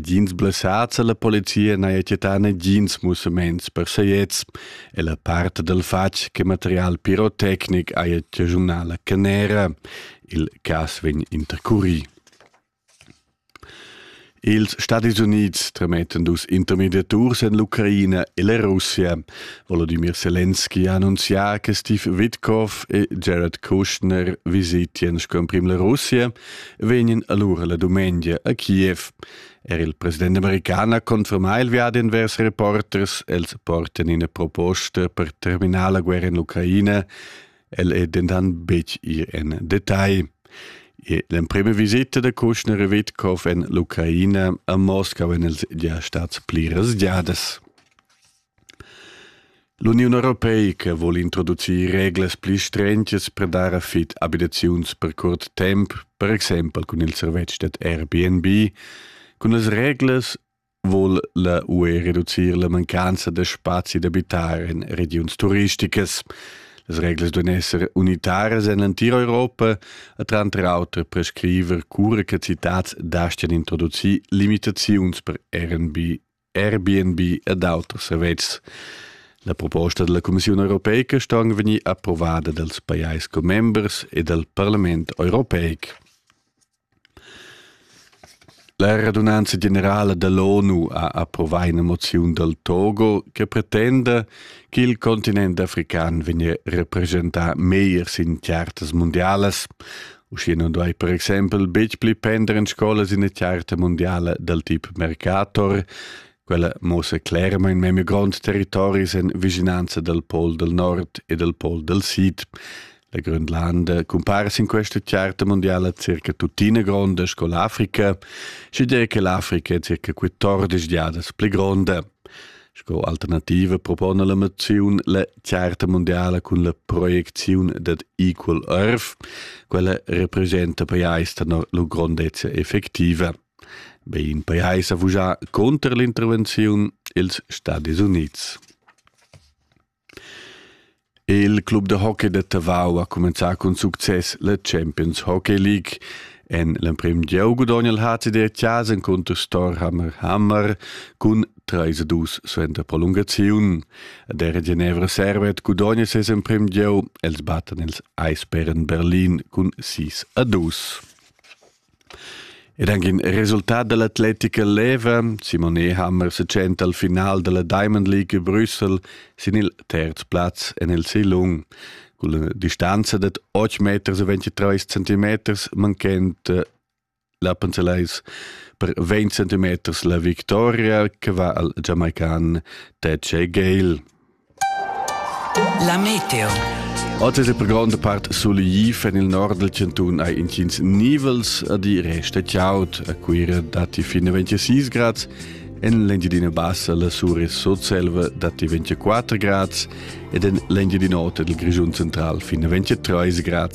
Gins blessats alla polizia n'haja chattà negins mussaments per saiets e la part dal fatg che material pirotecnic haja chaschunà la canera. Il cas vegn intercurì. Ils Stati Unids tremettan dus intermediaturs en l'Ucraina e la Russia. Volodymyr Zelensky ha annunzià che Steve Witkoff e Jared Kushner visitian sco emprim la Russia vegnan allura la dumengia a Kiev. Er il president american ha confermà il viadi envers reporters. Els portan ina proposta per terminar la guerra in l'Ucraina. El è dentant betg ir en detail. L'emprima visita da Kushner e Witkov en l'Ucraina a Moskau en els già stats pliras giadas. L'Uniun europeica vul introducir reglas pli strengias per dar a fit abitaziuns per curt temp, per exempel cun il servetsch dad Airbnb. Cun las reglas vul la UE reducir la mancanza da spazi d'abitar en regiuns turisticas. Las reglas duan esser unitaras en l'entira Europa e tranter auter prescriver cura che citads dastgan introducir limitaziuns per Airbnb Airbnb ed auters servetschs. La proposta della Commissiun europeica ston vegnir approvada dals pajais commembers e dal Parlament europeic. La radunanza generala dall'ONU ha approvà ina moziun dal Togo che pretenda che il continent african vegnia representà meglier sin chartas mundialas, Uschia nun duai per exempel betg pli pender en scola sin la charta mundiala dal tip Mercator. Quella muossa clermain memia gronds territoris en vischinanza dal pol dal nord e dal pol dal sid. La Grönlanda cumpara sin questa charta mundiala circa tuttina gronda sco l'Africa, sche dire che l'Africa è circa 14 giadas pli gronda. Sco alternativa propona la moziun la charta mondiala cun la proiecziun dad Equal Earth. Quella representa pajais tenor la grondezza effectiva. Be in pajais ha vugià conter l'intervenziun ils Stati Units. Il club da hockey da Tavau ha cumenzà cun success la Champions Hockey League. En l'emprim gieu gudogna il HCD Chas encunter Storhammer Hammer cun 3 a 2 suenter prolungaziun. Der Genevra Servet gudogna ses emprim gieu, els battan ils Eisbären Berlin cun 6 a 2. Ed anc in resultat da l'atletica leva. Simone Hammer se tschenta al final dalla Diamond League a Brüssel sin il terz plaz en il Silung. Con la distanza da 8 meters e 23 centimeters manchent eh, la Panzelais per 20 centimeters la victoria che va al Jamaican Tetche Gale. La meteo. Oter per gronda part solegli en il nord del cantun hai intgins nivels a di resta chiaut a Cuira datti fine 26 grad en l'Engiadina Bassa la Sure Sotselva datti 24 grad ed en l'Engiadina Ota del Grischun Central fine 23 grad.